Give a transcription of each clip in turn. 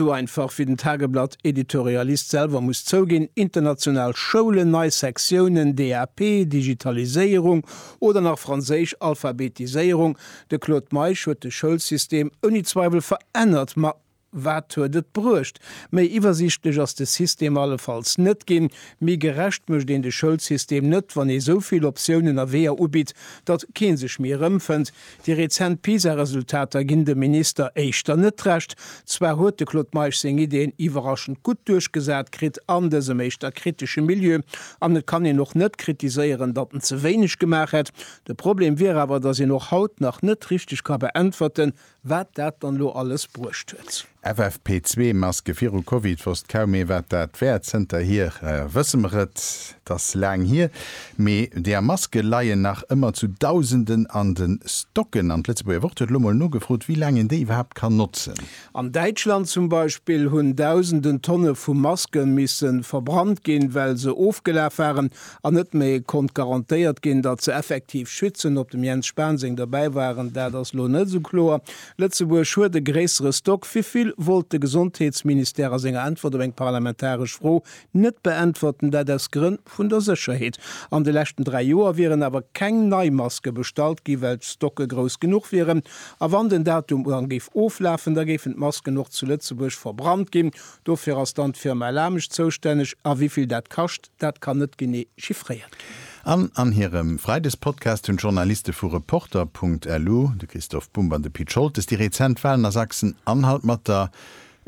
Sou einfach wéi den Tageblatt-Editorialist selwer muss zouginn, international Schoulen, nei Sektiounen, DAP, Digitaliséierung oder nach franséisch Alphabetiséierung, de Claude Meisch huet de Schoulsystem ouni Zweiwel verännert. Ma wat huet et bruecht? Méi iwwersiichtlech ass de System allefalls net ginn. Méi gerecht mécht een de Schoulsystem net, wann ee sou vill Optiounen a Weeër ubitt, datt kee sech méi erëmfënnt. Déi rezent PISA-Resultater ginn dem Minister éischter net Recht. Zwar huet de Claude Meisch seng Ideeën iwwerraschend gutt duerchgesat kritt an dësem éischter kritesche Milieu, an et kann een och net kritiséieren, datt en ze wéineg gemaach hätt. De Problem wier awer, datt een och haut nach net richteg ka beäntwerten, wat dat dann elo alles bruecht huet. FFP zwee Maske viru Covid wosst kaum méi wat dat wär. Zënterhier wësse mer et, et ass laang hier, mee där Maske leien nach ëmmer zu Dausenden an de Stocken. An d'Lëtzebuerger Wort huet elo mol nogefrot, wéi laang een déi iwwerhaapt kann notzen. An Däitschland zum Beispill hunn Dausenden Tonne vu Maske misse verbrannt ginn, well se ofgelaf waren an net méi konnt garantéiert ginn, datt se effektiv schützen. Ob dem Jens Spahn seng dobäi waren, dat ass elo net esou kloer. Lëtzebuerg huet e gréissere Stock. Wéivill wollt de Gesondheetsministère a senger Äntwert op eng parlamentaresch Fro net beäntwerten, dat aus Grënn vun der Sécherheet. An de leschten dräi Joer wieren awer keng nei Maske bestallt ginn, well d'Stocke grouss genuch wieren. A wann den Datum uran géif oflafen, da géifen d'Masken och zu Lëtzebuerg verbrannt ginn. Dofir ass dann d'Firma Lamesch zoustänneg. A wéivill dat kascht? Dat kann net genee chiffréiert ginn. An an hirem Freidespodcast hunn d'Journaliste vu Reporter Punkt lu, de Christoph Bumb an de Pit Scholtes, déi rezent Walen a Sachsen an halt mat der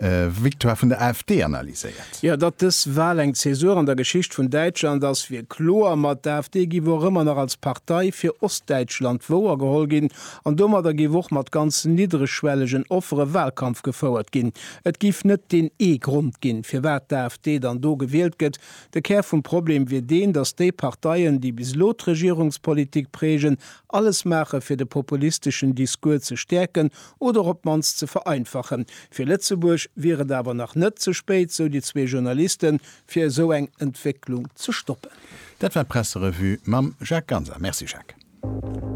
Victoire vun der AfD analyséiert. Jo, datt dës Wal eng Zäsur an der Geschicht vun Däitschland ass, wier kloer. Ma d'AfD giff och ëmmer nach als Partei fir Ostdäitschland wouergeholl ginn an domadder giff och mat ganz niddregschwellegen Offere Walkampf gefouert ginn. Et géif net deen ee Grond ginn, firwat d'AfD dann do gewielt gëtt. De Kär vum Problem wier deen, datt déi Parteien, déi bis elo d'Regierungspolitik prägen, alles maache fir de populisteschen Discours ze stäerken oder op d'mannst ze vereinfachen. Fir Lëtzebuerg wier et awer nach net ze spéit, sou déi zwee Journalisten, fir esou eng Entwécklung ze stoppen. Dat war d'Presserevue mam Jacques Ganser. Merci Jacques.